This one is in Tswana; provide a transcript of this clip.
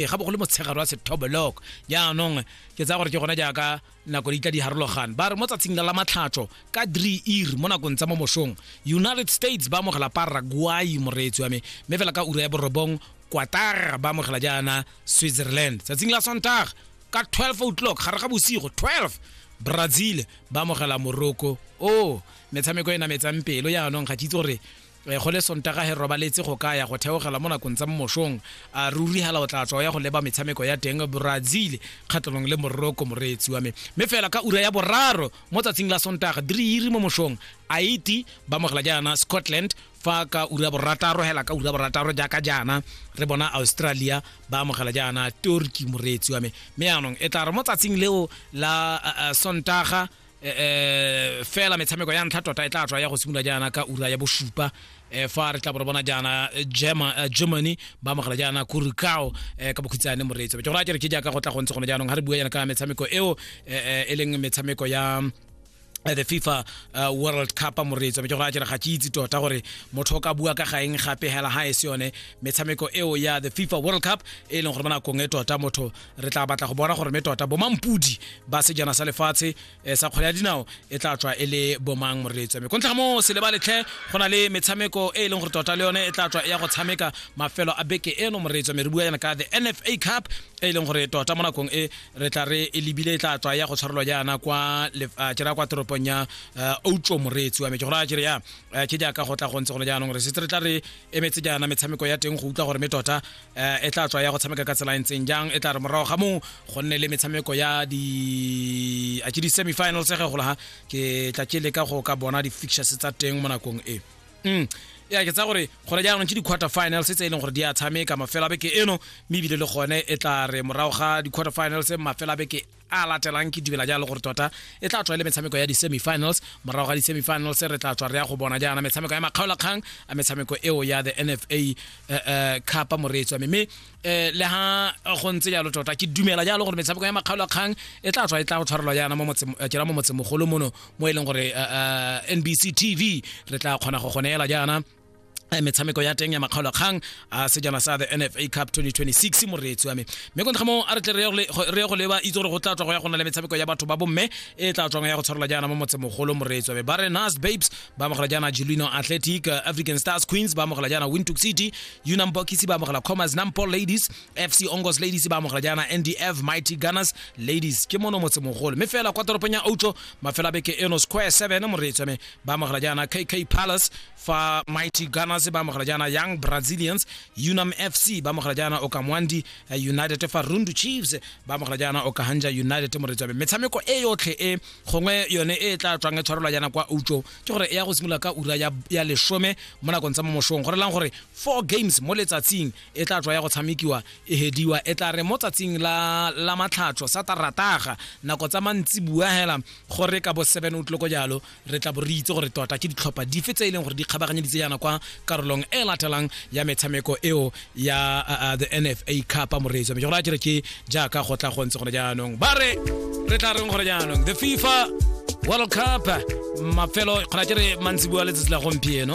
e ga bogolo motshegare wa sethoboloko jaanong ke tsaya gore ke gona jaaka nako di tla di harologane ba re mo tsatsing la matlhatso ka dre ir mo nakong tsa mo mosong united states ba amogela paraguay moreetsi wa me mme fela ka ura ya borobong quatar ba amogela jaana switzerland tsatsing la sontaga ka 12 o'clock gare ga bosigo 12 brazil ba amogela morocco o oh, metshameko e nametsang pelo jaanong ga ke itse gore Eh, go le sontaga he robaletse go ka ya go theogela mo nakong tsa mmošong a ruri hela o tla tswa ya go leba metshameko ya teng brazil kgatlhanong le moroko moreetsi wa me mme fela ka ura ya boraro mo tsatsing la sontaga diriiri mo mošong haiti ba mogela jaana scotland fa ka ura borataro hela ka ura borataro jaaka jaana re bona australia ba amogela jaana turkey moreetsi wa me mme yaanong e tla re mo tsatsing leo la uh, sontaga eh fela metshameko ya ntlha tota e tla tswa ya go simolola jaana ka ura ya bosupa eh fa re tla bo bona jaana eh, Germa- eh, germany ba amogela jaana kurikao eh ka bokhutsane moreetso ke go raya ke re ke jaaka go tla go ntse gone jaanong ga re bua jaana ka metshameko eo eh, eh, e leng metshameko ya eh, the fifa uh, world cup moreetso ke go raya ke re ga ke itse tota gore motho o ka bua ka gaeng gape hela ga e se yone metshameko eo ya the fifa world cup e leng gore mo nakong e tota motho re tla batla go bona gore me tota bomampudi ba sejana sa lefatshe eh, sa kgwele ya dinao e tla tswa e le bomang moreletso me kontlha mo se leba letlhe go na le metshameko e e leng gore tota le yone e tla tswa e ya go tshameka mafelo a beke eno moreletso me re bua yana ka the nfa cup e e leng gore tota mo nakong e re tla re e lebile e tla tswa ya go tshwarelwa jaana kwa kera kwa toropong ya eh, outlo moreetsi wa me ke gore a kere ya eh, ke jaaka go tla go ntse gone jaanong re setse re tla re emetse jaana metshameko ya teng go utlwa gore me tota um e tla tswa ya go tshameka ka tsela e ntseng jang e tla re morago ga moo go nne le metshameko ya di a ke di-semifinals ge gola ha ke tla ke leka go ka bona di-fixtures tsa teng mo nakong e mm ya ke tsa gore gone jaanong ke di-quarter finals tse e leng gore di a tshameka mafela beke eno mme ebile le gone e tla re morago ga di-quarter finals mafela beke a latelang ke dumela jalo gore tota e tla tswa e le metshameko ya di-semifinals morago ga di-semifinals re tla tswa re ya go bona jaana metshameko ya makgaolakgang a metshameko eo ya the nfa eh, eh, cup moreetswa mme mme eh, le ha go ntse jalo tota ke dumela jalo gore metshameko ya makgaolakgang e tla tswa e tla go tshwarelwa jaana mo motseng- eh, kena mo motsemogolo mono mo e leng gore eh, eh, nbc tv re tla kgona go goneela jaana Eh, metshameko ya teng ya makgaolakgang a ah, sejana sa the nfa cup 2026 moreetsi wa me mme kontra mo a re tle re go leba itse gore go tla tswa go ya go na le metshameko ya batho ba bomme e tla tswang ya go tshwarela jaana mo motsemogolo moreetsi wa me bare nas babes ba amogela jaana julino athletic eh, african stars queens ba amogela jaana wintook city unam bokisi ba amogela commerce nampo ladies fc ongos ladies ba amogela jaana ndf mighty gunners ladies ke mono motsemogolo mme fela kwa toropong ya outlo mafela beke eno square 7 moreetsi wa me ba amogela jaana kk palace fa mighty gunners ba amogela jaana young brazilians unam fc ba amogela jaana okamwandi eh, united fa rundu chiefs ba amogela jaana okahanja united moretswabe metshameko e yotlhe e gongwe yone e e tla tswang e tshwarelwa jaana kwa utsho ke gore e ya go simolola ka ura ya, ya lesome mo nakong tsa mo mosong go relang gore four games mo letsatsing e tla tswa ya go tshamekiwa e hediwa e tla re mo tsatsing la, la matlhatsho sa tarataga nako tsa mantsibuya hela gore ka bo 7 o tloko jalo re tla bo re itse gore tota ke ditlhopha dife tse e leng gore di kgabaganyeditse yana kwa karolong e latelang ya metshameko eo ya uh, uh, the nfa cup moreetso mme gore a kere ke jaaka go tla go ntse gone jaanong ba re re tla reng gore jaanong the fifa world cup mafelo kgona kere mantsiboa letsatsi la gompieno